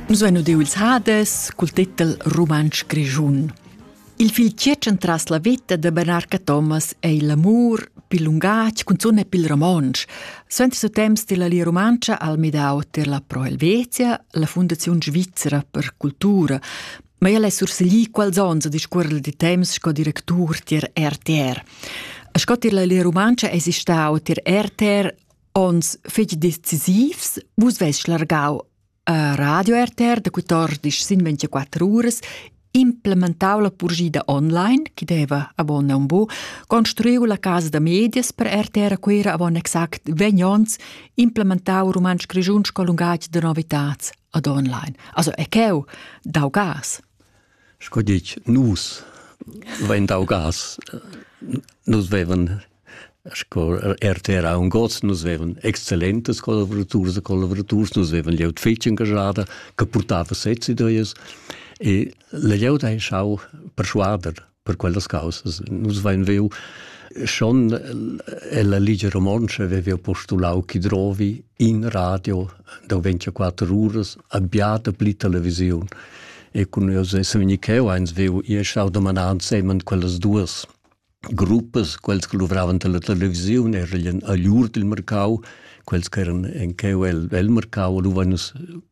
Nus vein udiu ils Hades cul titel Rumantsch grischun. Il fil tgietschen tras la veta da Bernard Cathomas ei l'amur pil lungatg cunzun e pil romontsch. Suenter su temps della Lia Rumantscha al midau ter la Pro Helvetia, la Fundaziun Svizzera per cultura, ma el è surseglì quals onns a discuorrer di temps sco directur tier RTR. A sco tier la Lia Rumantscha es stau tier RTR Ons fich decisivs, vus vess schlargau a Radio RTR da 14 sin 24 uras implementau la purgida online, chi deva avon un bu, construiu la casa da medias per RTR a Cuira avon exact 20 ons, implementau rumantsch grischun sco lungaj da novitats ad online. Also e cheu dau gas. Sco dic, nus vein dau gas, nus vevan Sco RTR ha un gods, nus vevan excellentas collaboraturs e collaboraturs, nus vevan glieud fetg engagada che purtava sezs ideas e la glieud ha schau perschuader per quellas causas. Nus vein viu schon ella Ligia Romontscha vevi postulau chi drovi in radio da 24 uras abbiata pli televisiun. E cun jeu se vegni cheu eins viu, io schau domanar ensemen quellas duas. gruppas, quels che luvravan per la televisiun, erien a lur dil mercau, quels che eran en cheu el, el mercau luvan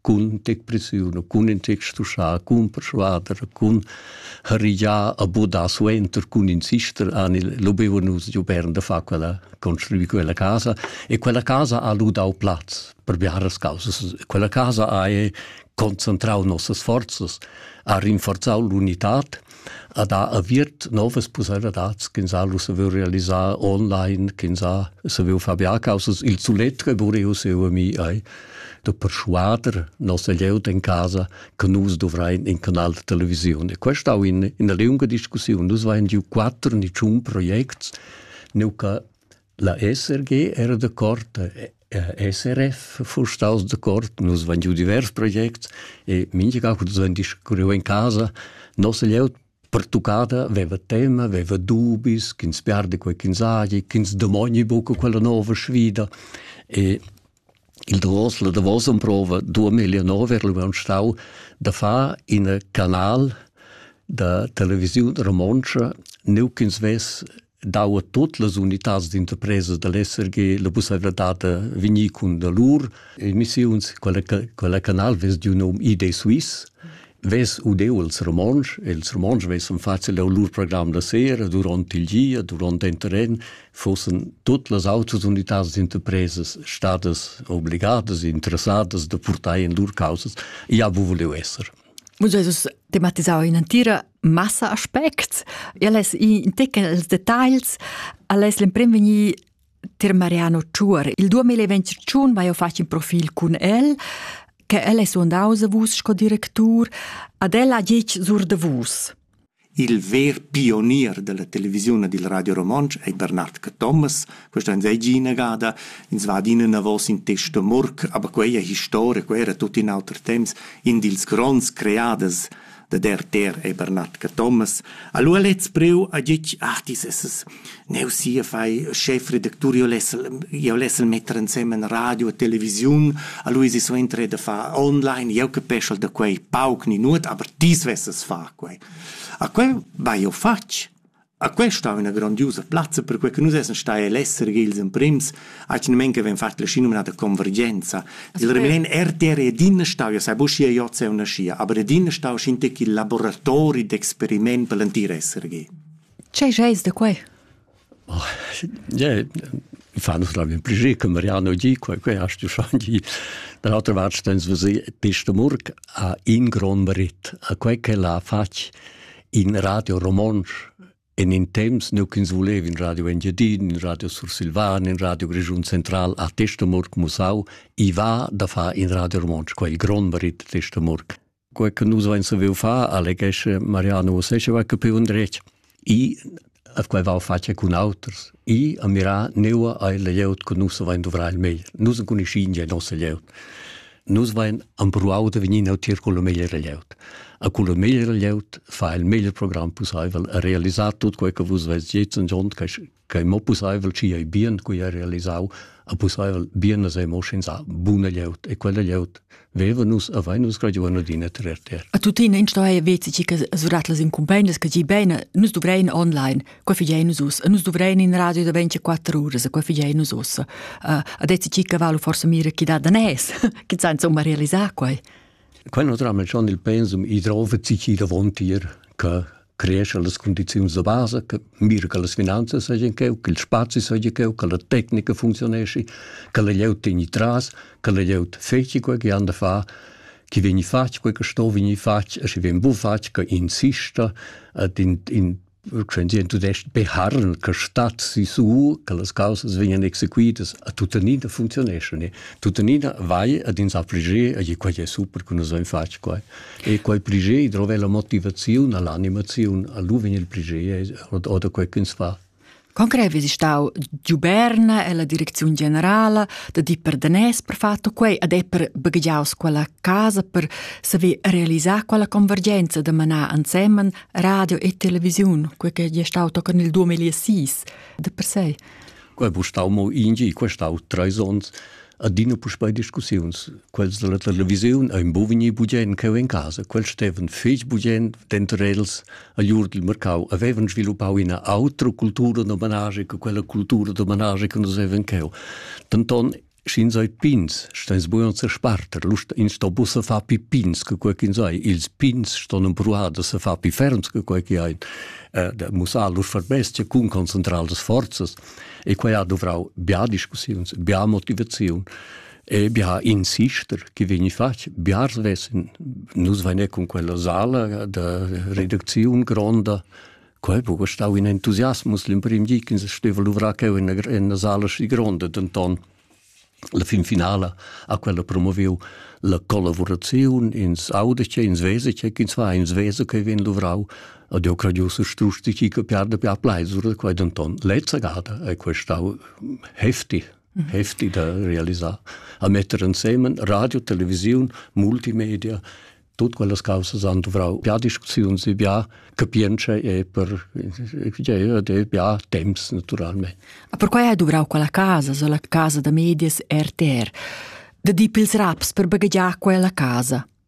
cun tec presiun, cun in tec stuschar, cun persuader, cun harigiar a bodar suenter, cun insistere, ani lubeva nus giu bern da far quella, construir quella casa e quella casa ha lu dau plaz per biaras causas. Quella casa ha concentrau nossas forzas, ha rinforzau l'unitad, ad ha aviert novas pusseivladads ch'ins ha lu saviu realisar online, ch'ins ha saviu far biacausas. Il suletre vuriu siu mi ei da perschuader nossa glieud en casa che nus dovrein in canal de televisiun. E questa è in, in lunga discussione. Nus vein giu quattro ni tschun projects, nu che la SRG era de corte SRF fuss staus d'accord, nus vein giu divers projects e mintga cu vein discurriu en casa. Nossa glieud pertuccada veva tema, veva dubis, ch'ins perdi quei ch'ins hagi, ch'ins domogni buca quella nova sfida. E il davos, la davos emprova 2009 er abbiamo stau da far in canal da televisione romontsch, neu ch'ins vess dau a tot las unitads d'interpresa dall'SRG la pusseivladad da vegnir cun da lur emissiuns. Quella, quella canal vess giu nom ID Suisse, vess udeu els romontsch, e els romontsch vessan facil leu lur program da sera duront il gia, duront in terren, fossen tot las autras unitads d'interpresas stadas obligadas, interessadas da purtar in lur causas, ja bu voleu esser. Muss Jesus tematisau in entira massa aspects. El es in tecca els dettagls, al es l'emprim vegni ter Mariano Tschuor. Il 2021 vai ho fatg in profil cun el, che el es undaus vus sco directur, ad el ha gitg sur de vus. Il ver pionier dalla televisiun e dil Radio Romontsch ei Bernard Cathomas. Questa ans ei gia inagada. Ins va adina enavos in testo murk, aber quei è historia, quei era tut in auter temps. In dils gronds creaders da der ter ei Bernard Cathomas. Allora lez preu a ditg, ah, dis es es Neu sia fai schefredactur, io lessel io lessel metter ensemen radio e televisiun, a Luisi suenter da far online, io capeschel da quei pauc ni nuot, aber tis vesses far quei. A quei vai io fatg. A quei stau üna grandiosa plazza, per quei che nus essen stai all'essere ils emprims, ac nemen che ven fat la sci nominata convergenza. Il remen RTR ed in stau, io sai buscia io se una scia, aber ed in stau scinte che laboratori d'experiment per l'antir essere ge. Tgei scheis da quei? Oh, yeah, fa nus la min pliger che Mariano di quei quei hast du schon di da l'altra vart stens vos pesta murk a in gron merit a quei che l'ha fatg in radio romonsch en in temps nu ch'ins volev in radio Engiadin, in radio Sursilvan, in radio Grischun Central a Testamurk Musau, i va da far in radio romonsch, quei il grond merit Testamurk. quei che nus vein saviu far, alleghesce Mariano Usesceva, che più un dretg. I a quei va face cun auters. I a mirà neua ai leieut che nus vein dovrar il meglier. Nus conoscin ja nossa leieut. Nus vein ampruau de venir neutier con il meglier leieut. A con il meglier leieut fa il meglier program possibel a realizzar tut quei che vus vez jetzt und und che mo pusseivel ci ei bien cui ha realisau a pusseivel bien as emo schins a buna glieud e quella glieud veva nus a vai nus graduan adina tre ter a tutina in stoe vezi ci che surat las incumbendas che gi bene nus dovrein online qua figei nus us nus dovrein in radio da 24 ore qua figei nus us a dezi ci che valu forse mira chi da da nes chi san insomma realisar quai Quando drammen schon il pensum, ich trove sich davon dir, che creescha las cundiziuns da basa, che mira che las finanzas seigien cheu, che il spazi seigi cheu, che la tecnica funzionesci, che la glieud tegni tras, che la glieud feci quei che han da far, chi vegni fatg quei che sto vegni fatg e schi vegn bu fatg che insista et in, in Quenzien tudest beharren che stat si su che las causas vegnan exequitas a tuttenina funzioneschon e tuttenina vai ad ins affligir e quei è super che nus haben fatg quei E quei pliger drova la motivaziun alla animaziun, a lu vegn il pliger oder quei ch'ins fa. Concret vi stau Duberna e la direcziun generala da di per danès per fatto quei ad è per baggiaus quella casa per saver realisar quella convergenza da manar ansemen radio e televisiun, quei che è stau tocan il 2006 de per sé. Quel bu stau mo ingi e questau treis ons adina puspei discussiuns. Quels dalla televisiun ein bovini bugien cheu en casa. Quels stevan fetg bugien denter els a Jur dil Mercau avevan sviluppau ina autra cultura d'homenage che quella cultura d'homenage che nus avevan cheu. Denton Sch'ins ei pins, steins bugen sesparter, lust ins sto buca far pi pins che quei ch'ins ei. Ils pins ston empruar da se far pi ferms che quei che ein, eh, da mussar lur verbestia cun concentrar las forzas. E quei ha duvrau bia discussiuns, bia motivaziun e bia insister che vegni fatg. Bia vessen, nus vegne cun quella sala da reducziun gronda, Quei buca stau in entusiasmus l'emprim di ch'ins steva luvrar cheu en ina sala schi gronda, denton la fin finala ha quella promoviu la collaboraziun, ins auda che ins vesa che ins va, ins vesa che vegn luvrau ed jeu crediu strusch di chi che piarda pia pleisur, quei denton. Lezza gada ei quei stau heftig. heftig da realisar, a metter ensemen radio, televisiun, multimedia, tut quellas causas han dovrau bia discussiuns e bia capientscha e per e bia temps naturalmente. Ma perquai hai dovrau quella casa, so la casa da medias RTR, da dir pils raps per baghegiar quella casa.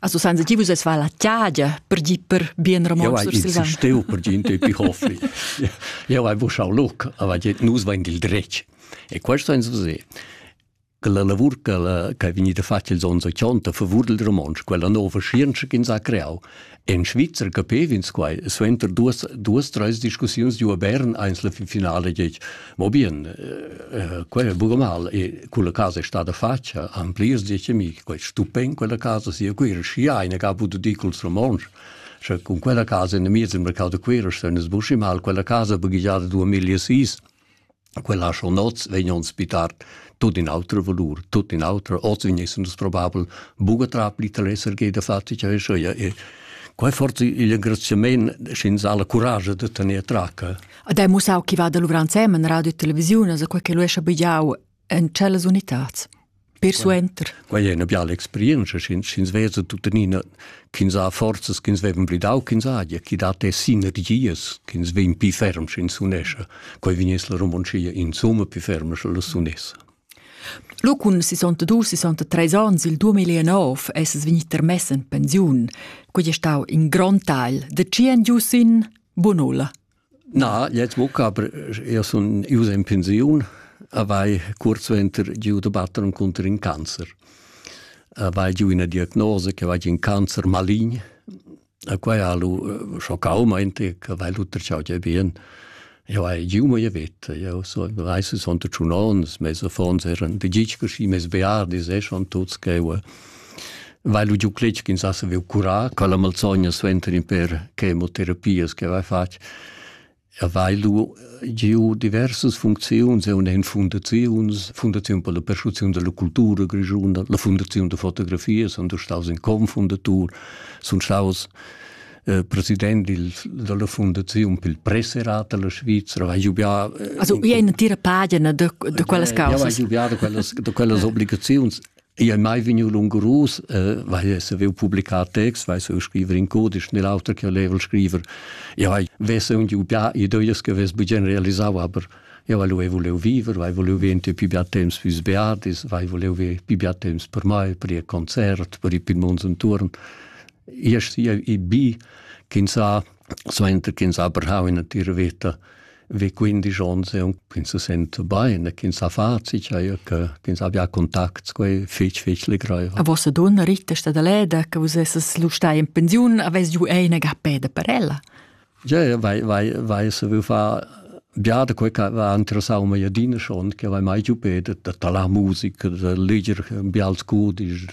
Also seien sie die, es war la tiadia per di per bien Ramon ja, sur Silvan. Steu per di intu pi hofli. Ja, vai wo schau loc, aber die nus vain il dretg. E questo ein so se. che la lavur che, che è venuta fatta il sonno 80 favor del romansch, quella nuova scienza che ins ha creato. In Svizzera capev'ins quai, suenter duas, duas, drei discussioni di a Bern, eins la finale, Mo bien, eh, quei è buca mal e quella casa è stata fatta an plirs decenni, quei è stupen quella casa, sia qui era schi eine che ha potuto dire col romansch. Cioè, con quella casa in mezzo al mercato qui se ne sbusci mal, quella casa è baghigiata 2006. Quella schon vegn uns bitar tot in altro valor, tot in altro, oz venesse uns probabel buca tra pli telesser che da fatti cioè so ja e quei forse il engraziament schin sa la courage de tener traca Ad hai mussau chi va da luvrar ensemen radio e televisiun, as quai che lu escha bigliau en tschellas unitats. Per suenter. Quai è una biala experienza, sch'ins vesa tuttenina ch'ins ha forzas, ch'ins vevan blidau, ch'ins ha, chi dat e sinergias, ch'ins vegn pi ferm, sch'ins unesce. Quai vegnes la Romoncia, insomma, pi ferm, sche la sunessa. Lu cun 62-63 onns il 2009 esses vegnit termess en pensiun. Quei è stau in grond tagl. Da tgi en giu sin? Bunulla. Na, jetzt buca, aber io sun ius in pensiun, avai kurzwinter giu de batter un conter in cancer. Avai giu una diagnose che va in cancer malign, A quai ha lu eh, schoccau meinte che vai lutter ciao ge bien. Jo hai giu mo vet, jo so reise sonte zu nons, mes affons eran de gich così mes beardi se schon tuts che vai lu giu cletg ins asa veu curà, ca la malsogna suenter in per chemoterapias che vai fatg. Avei lu giu diversas funcziuns, eu n'he fundaziuns, Fundaziun per la perschuasiun della cultura grischuna, la Fundaziun da fotografia, sun staus in confundatur, sun staus eh, president il, della Fundaziun pel Presserat della Svizra, avei giubià... Eh, also, ia è una tira pagina de, de quellas causas. Io avei giubià de quellas, de quellas obligaziuns Io è mai vigniu lungurus, eh, weil es avevo publicat text, weil so scriver in codisch, nell'altro che olevo scriver. Io hai vesse un giu pià, i doies che ves bugen realisau, aber io volevo volevo viver, weil volevo venti più più temps fürs Beatis, weil volevo più più temps per mai, per il concert, per i Pimons und Turn. Ich sehe, ich bin, kind sa, Suenter ch'ins ha brau ina natira veta vi quindisch onns e ins se senta bein e ch'ins ha facit eir che ch'ins abbia contacts quei fich fich legreiva. A vossa donna rittesta da leda che vus esses lu stai in pensiun avess ju ei ina gappeda per ella. Ja, vai vai vai se vu fa Ja, da quei va interessau mei adina schon, che vai mai giu pedet da talar musica, da leger bials codisch,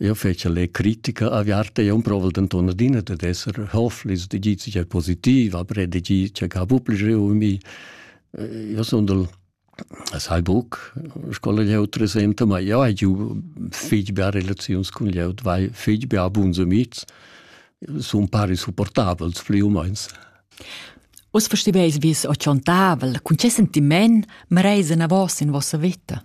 Io fece le critica aviarte, io provo denton adina de esser hoflis, de gi cia positiv, aber de gi cia ca pupligiu mi. Io son del sai buc scola jeutre senta, ma io hai giu fig bia relaziuns cun jeut, vai fig bia buns amics, sun pari supportabels pli o meins. Us versteveis, wie es o chantavel, cun che sentiment mereis en a vos in vossa vita?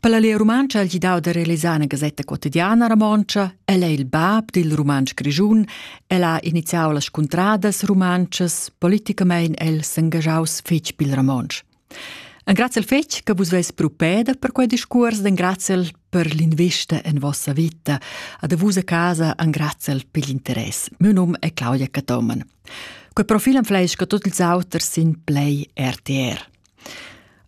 Per la Lia Rumantscha ha el gidau da realisar una gasetta quotidiana romontscha. El è il bab dil rumantsch grischun. El ha iniziau las cuntradas rumantschas. Politicamein el s'engagiaus fetg pil romontsch. Engraziel fetg che vus veis propeda per quei discurs, engraziel per l'invista en vossa vita. Ad vus a casa engraziel per l'interess. Mio num è Claudia Catoman. Quei profil am fleisch che tot ils auters sin Play RTR.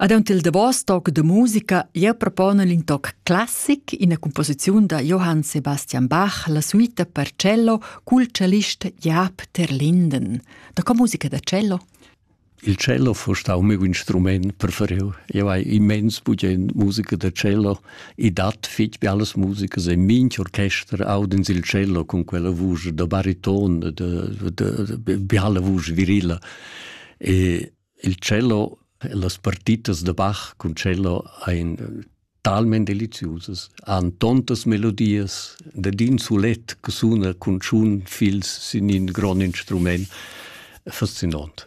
Aunc il davos toc da musica jeu propona in toc classic, ina composiziun da Johann Sebastian Bach, la suita per cello cul cellist Jaap Terlinden. Da co musica da cello? Il cello fa stau il mio instrument preferiu. Io hai immens bugen musica da cello e dat fitg be alles musica. E minch orchester audens il cello con quella vuce da bariton, da, da, da, da, da, da, da, da, da, da, da, da, da, da, Il cello e las partitas da Bach cun cello ein talment deliziusas, han tontas melodias dad in sulet che suna cun tschun fils sin in grond instrument fascinont.